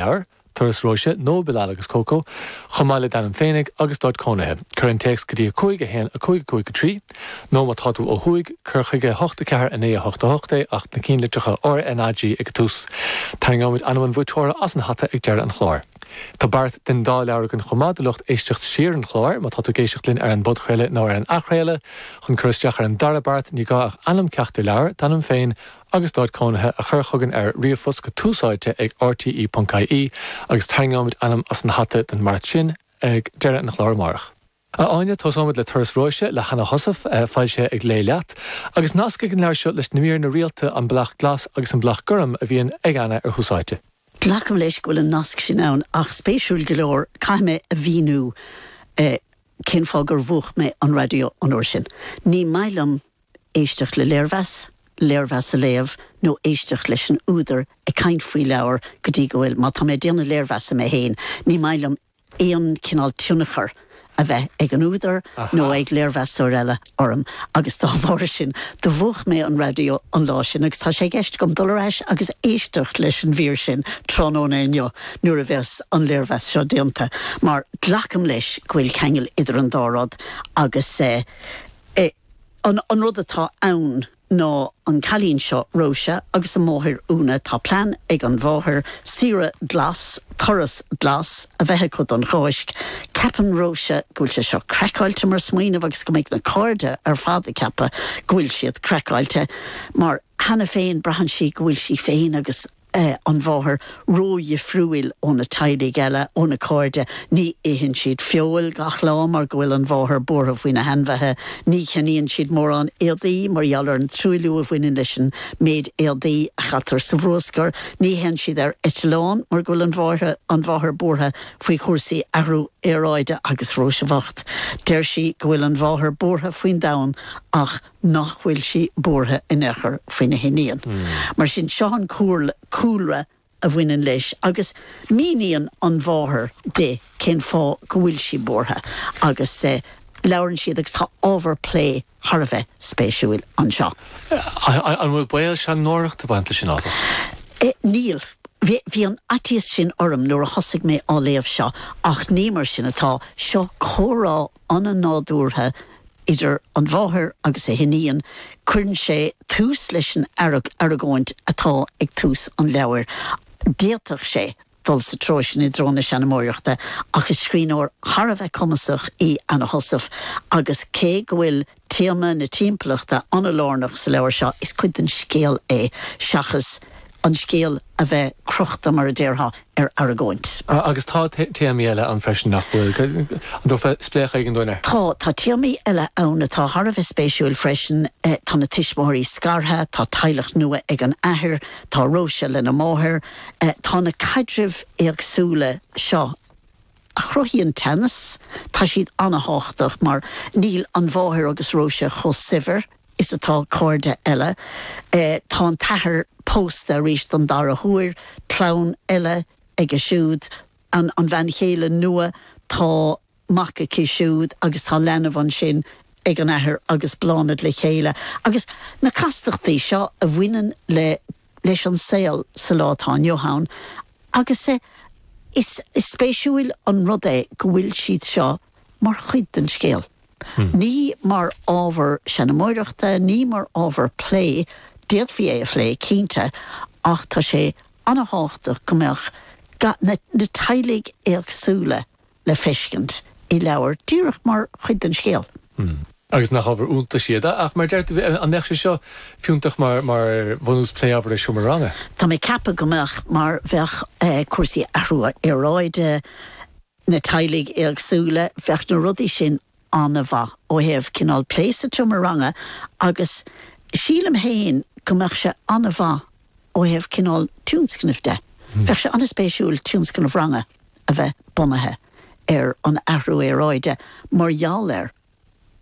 leabhar, Turas Róise, nó Bilal agus Coco, chomh maith le d'ainm féinig agus d'áit cónaithe. Cuir an téacs go dtí 5 1 5 5 3 nó, má tá tú ó thuaidh, cuir chuig 8 4 9 8 8 é ach na cinn litreacha R, N, A, G ag an tús. Tarraingeoimid ainm an bhuaiteora as an hata ag deireadh an chláir. Tá beart den dá leabhar againn chomh maith do lucht éisteacht siar an chláir. Má tá tú ag éisteacht linn ar an bpodchraoladh nó ar an athchraoladh, chun cur isteach ar an dara beart, ní gá ach ainm ceachtar leabhar, d'ainm féin, agus d'áit cónaithe a chur chugainn ar ríomhphost go túsáite ag RTÉ.ie agus tarraingeoimid ainm as an hata don mbeart sin ag deireadh an chláir amárach. A Áine, tósóimid le Turas Róise le hAnna Heussaff, foilsithe ag Léigh Leat, agus nasc ag an leabhar seo leis na míreanna rialta An Bleaig Glas agus An Bleaig Gorm a bhíonn ag Anna ar Thúsáite. Glacaim leis go bhfuil an nasc sin ann ach spéisiúil go leor caithfidh mé a mhíniú cén fáth gur mhúch mé an raidió an uair sin. Ní maith liom éisteacht le léirmheas, léirmheas a léamh nó éisteacht leis an údar ag caint faoi leabhar go dtí go bhfuil, má tá mé ag déanamh léirmheasa mé féin, ní maith liom aon chineál tionchar a bheith ag an údar nó ag léirmheastóir eile orm agus dá bharr sin, do mhúch mé an raidió an lá sin agus tá sé i gceist agam dul ar ais agus éisteacht leis an mhír sin tráthnóna inniu nuair a bheas an léirmheas seo déanta mar glacaim leis go bhfuil ceangal idir an dá rud agus eh. An rud atá ann ná an cailín seo Róise agus a máthair Úna. Tá plean ag an mháthair, saoire glas, turas glas, a bheith acu don Cháisc. Ceapann Róise go bhfuil sé seo craiceáilte mar smaoineamh agus go mbeidh na cairde ar fad ag ceapadh go bhfuil siad craiceáilte mar cheana féin braitheann sí go bhfuil sí féin agus a an mháthair ródhifriúil ó na teaghlaigh eile, ó na cairde, ní itheann siad feoil gach lá mar go bhfuil an mháthair buartha faoi na hainmhithe, ní cheannaíonn siad mórán éadaí mar gheall ar an truailliú a bhaineann leis an méid éadaí a chaitear sa bhruascar, ní théann siad ar eitleán mar go bhfuil an mháthair, an mháthair buartha faoi chúrsaí athrú aeráide agus Róise bhocht, deir sí go bhfuil an mháthair buartha faoin domhan ach nach bhfuil sí buartha in aon chor faoina hiníon. Mar sin, seo an cúlra a bhaineann leis agus míníonn an mháthair di cén fáth go bhfuil sí buartha agus labhrann siad agus tá ábhar plé thar a bheith spéisiúil anseo. An bhfuil baol seanmóireacht ag baint leis sin, áfach? Níl. Bhí an faitíos sin orm nuair a thosaigh mé á léamh seo ach ní mar sin atá. Seo comhrá an-nádúrtha idir an mháthair agus a hiníon, cuireann sé tús leis an argóint atá ag tús an leabhair. D'fhéadfadh sé dul sa treo sin i dtreo na seanmóireachta ach is scríbhneoir thar a bheith cumasach í Anna Heussaff agus cé go bhfuil. Téama na timpeallachta an-lárnach sa leabhar seo. Is cuid den scéal é seachas an scéal a bheith crochta, mar a déarfá, ar argóint. Agus tá téamaí eile ann freisin, nach bhfuil? An dtabharfá spléachadh éigin dúinn air? Tá. Tá téamaí eile ann atá thar a bheith spéisiúil freisin. Tá na tuismitheoirí scartha, tá teaghlach nua ag an athair, tá Róise lena máthair. Tá na caidrimh éagsúla seo a chruthaíonn teannas. Tá siad an-tábhachtach mar níl an mháthair agus Róise chomh saibhir is atá cairde eile. Tá an t-athair pósta arís don dara huair, clann eile aige siúd, an bhean chéile nua, tá mac aici siúd agus tá leanbh ansin ag an athair agus Bláthnaid le chéile agus na castachtaí seo a bhaineann le leis an saol sa lá atá inniu ann agus is spéisiúil an rud é go bhfuil siad seo mar chuid den scéal, ní mar ábhar seanmóireachta, ní mar ábhar plé, d'fhéadfaí é a phlé, cinnte, ach tá sé an-thábhachtach go mbeadh na teaghlaigh éagsúla le feiscint i leabhar díreach mar chuid den scéal. Mm. Agus nach ábhar iontais iad? Ach, mar a deir tú, an mbeadh sé seo fiúntach mar bhunús plé, abair, i seomra ranga? Tá mé ag ceapadh go mbeadh, mar bheadh cúrsaí athrú aeráide, na teaghlaigh éagsúla, bheadh na rudaí sin an-mhaith ó thaobh cineál plé sa tseomra ranga agus sílim féin go mbeadh sé an-mhaith ó thaobh cineál tionscnaimh de. Bheadh sé an-spéisiúil tionscnamh ranga a bheith bunaithe ar an athrú aeráide mar gheall ar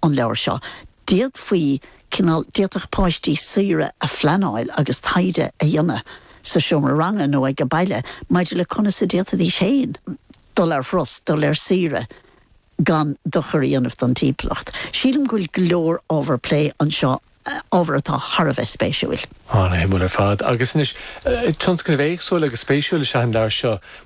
an leabhar seo. D'fhéadfaí cineál, d'fhéadfadh páistí saoire a phleanáil agus taighde a dhéanamh sa seomra ranga nó ag a' baile maidir le conas a d'fhéadfaidís féin dul ar thuras, dul ar saoire, gan dochar a dhéanamh don timpeallacht. Sílim go bhfuil go leor ábhar plé anseo, ábhar atá thar a bheith spéisiúil. Ana shuimiúil ar fad. Agus anois, tionscnamh éagsúil agus spéisiúil is ea an leabhar seo.